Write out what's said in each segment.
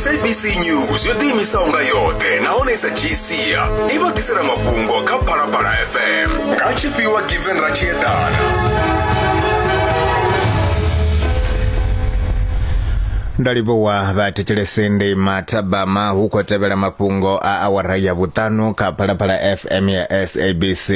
sabc news yo ḓiimisaho nga yoṱhe nahone sa gcia i vha ḓisela mafhungo kha phalaphala fm nga tshifhiwa given ra tshi eḓana nda livhuwa vhathetshelesi ndi mathabama hu khou tevhela mafhungo a awara ya vhuṱanu kha phalaphala fm ya sabc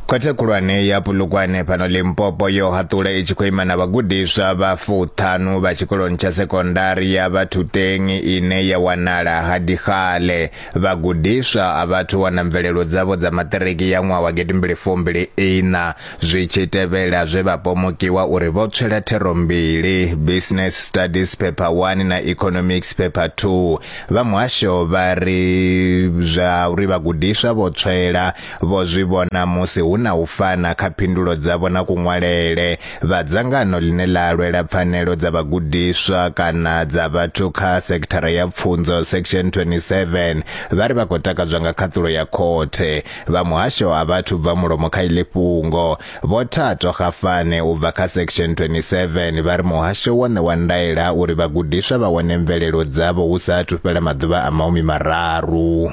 Khothe khulwane ya Pulukwane fhano Limpopo yo haṱula i tshi khou ima na vhagudiswa vha fuṱhanu vha tshikoloni tsha sekondari ya Vhathuteng ine ya wanala ha Dikgale. Vhagudiswa a vhathu wana mvelelo dzavho dza maṱiriki ya ṅwaha wa gidimbili fumbili ina zwi tshi tevhela zwe vha pomokiwa uri vho tswela thero mbili, Business Studies Paper 1 na Economics Paper 2. Vha muhasho vha ri zwa uri vhagudiswa vho tswela Vho zwi vhona musi hu na u fana kha phindulo dzavho na kuṅwalele. Vha dzangano ḽine ḽa lwela pfanelo dza vhagudiswa kana dza vhathu kha sekithara ya pfunzo section 27 vha ri vha khou takadzwa nga khaṱulo ya khothe. Vha muhasho a vha thu bva mulomo kha iḽi fhungo. Vho Thato Kgafane u bva kha section 27 vha ri muhasho wo ṋewa ndaela uri vhagudiswa vha wane mvelelo dzavho hu sa athu fhela maḓuvha a mahumi mararu.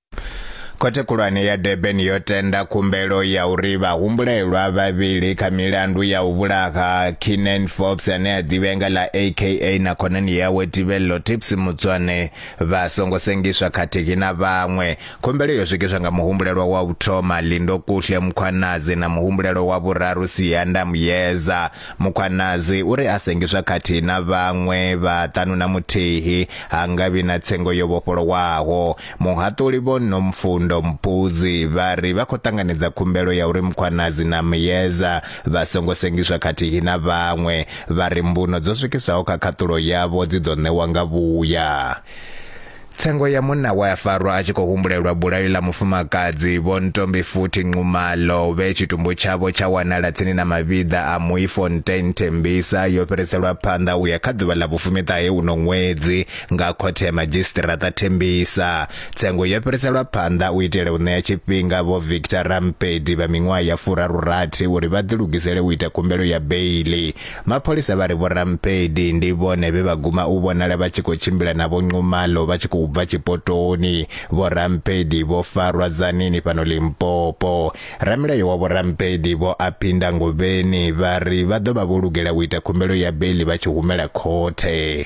Khothe Khulwane ya Durban yo tenda khumbelo ya uri vhahumbulelwa vhavhili kha milandu ya u vhulaha Keenan Forbes ane a ḓivhea nga ḽa AKA na khonani yawe Tibello Tips Mutswane vha songo sengiswa khathihi na vhaṅwe. Khumbelo yo swikiswa nga muhumbulelwa wa u thoma Lindo Kuhle Mukhwanazi na muhumbulelwa wa vhuraru Siyanda Muyeza. Mukhwanazi uri a sengiswa khathihi na vhaṅwe vha ṱanu na muthihi ha nga vhi na tsengo yo vhofholowaho. Muhaṱuli Vho Nomfundo Mpudzi vha ri vha khou ṱanganedza khumbelo ya uri Mkhwanazi na Myeza vha songo sengiswa khathihi na vhaṅwe, vha ri mbuno dzo swikiswaho kha khaṱulo yavho dzi ḓo ṋewa nga vhuya. Tsengo ya munna we a farwa a tshi khou humbulelwa bulayo ḽa mufumakadzi Vho Ntombifuthi Nxumalo vhe tshitumbu tshavho tsha wanala tsini na mavhiḓa a Mooifontein Tembisa yo fhiriselwa phanḓa u ya kha ḓuvha ḽa vhufumiṱahe uno ṅwedzi nga khothe ya madzhisiṱiraṱa thembisa tsengo yo fhiriselwa phanḓa u itela u ṋea tshifhinga vho victor rampedi vha miṅwaha ya furarurathi uri vha ḓilugisele u ita khumbelo ya beili mapholisa vha ri vho rampedi ndi vhone vhe vha guma u vhonala vha tshi khou tshimbila na vho nxumalo vha tshi khou bva tshipotoni vho rampedi vho farwa dzanini fhano limpopo ramilayo wa vho rampedi vho aphinda ngovheni vha ri vha ḓo vha vho lugela u ita khumbelo ya beili vha tshi humela khothe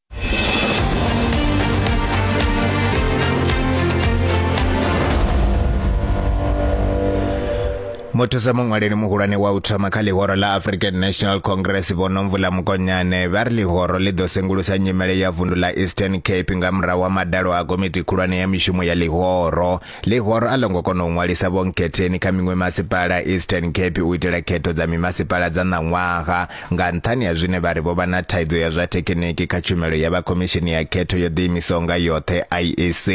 muthusa muṅwaleli muhulwane wa u thoma kha ḽihoro ḽa african national congress vhonomvula mukonyane vha ri ḽihoro ḽi ḓo sengulusa nyimele ya vundu ḽa eastern cape nga murahu wa madalo a komiti khulwane ya mishumo ya ḽihoro Ḽihoro a ḽo ngo kona u ṅwalisa Vho Nkhetheni kha miṅwe masipala a Eastern Cape u itela khetho dza mimasipala dza ṋaṅwaha nga nṱhani ha zwine vha ri vho vha na thaidzo ya zwa thekhiniki kha tshumelo ya vha Khomishini ya Khetho yo Ḓiimisaho nga Yoṱhe, IEC.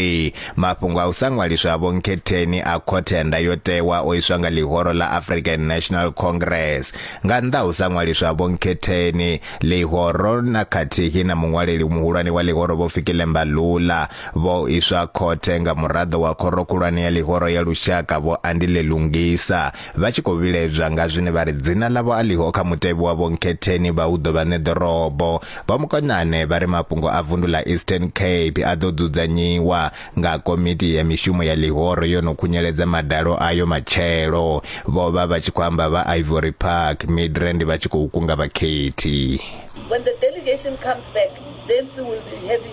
Mafhungo a u sa ṅwaliswa ha Vho Nkhetheni a Khothe ya Ndayotewa o iswa nga ḽihoro ḽa African National Congress. Nga nnḓa ha u sa ṅwaliswa ha Vho Nkhetheni, ḽihoro na khathihi na muṅwaleli muhulwane wa ḽihoro Vho Fikile Mbalula, Vho iswa khothe nga muraḓo wa Khoro Khulwane ya Ḽihoro ya Lushaka Vho Andile Lungisa vha tshi khou vhilaedzwa nga zwine vha ri dzina ḽavho a ḽiho kha mutevhe wa Vho Nkhetheni vha hu ḓo vha ṋe ḓorobo. Vho Mukonane vha ri mafhungo a vundu ḽa Eastern Cape a ḓo dzudzanyiwa nga komiti ya mishumo ya ḽihoro yo no khunyeledza madalo ayo matshelo. Vho vha vha tshi khou amba vha Ivory Park, Midrand vha tshi khou kunga vhakhethi. When the delegation comes back then she will be having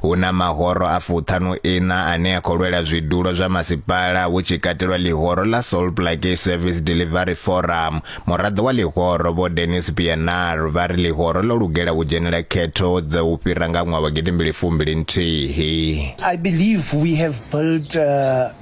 Hu na mahoro a fuṱhanu iṋa ane a khou lwela zwidulo zwa masipala hu tshi katelwa ḽihoro ḽa Salt Lake Service Delivery Forum. Muraḓo wa ḽihoro Vho Dennis Pienaar vha ri ḽihoro ḽo lugela u dzhenela khetho dza u fhira nga ṅwaha wa gidimbili fumbili nthihi. I believe we have built uh,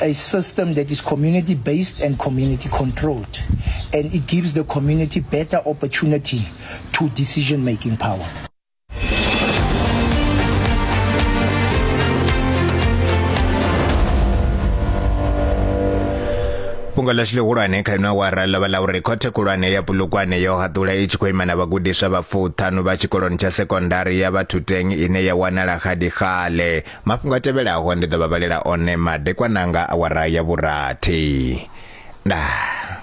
a system that is community-based and community-controlled, and it gives the community better opportunity to decision-making power. fhungo ḽashu ḽihulwane kha ino awara ḽo vha ḽa uri khothe khulwane ya pulukwane yo haṱula i tshi khou ima na vhagudiswa vha fuṱhanu vha tshikoloni tsha sekondari ya vhathuteng ine ya wanala xadixale mafhungo a tevhelaho ndi ḓo vha vhalela one madekwana nga awara ya vhurathi ndaa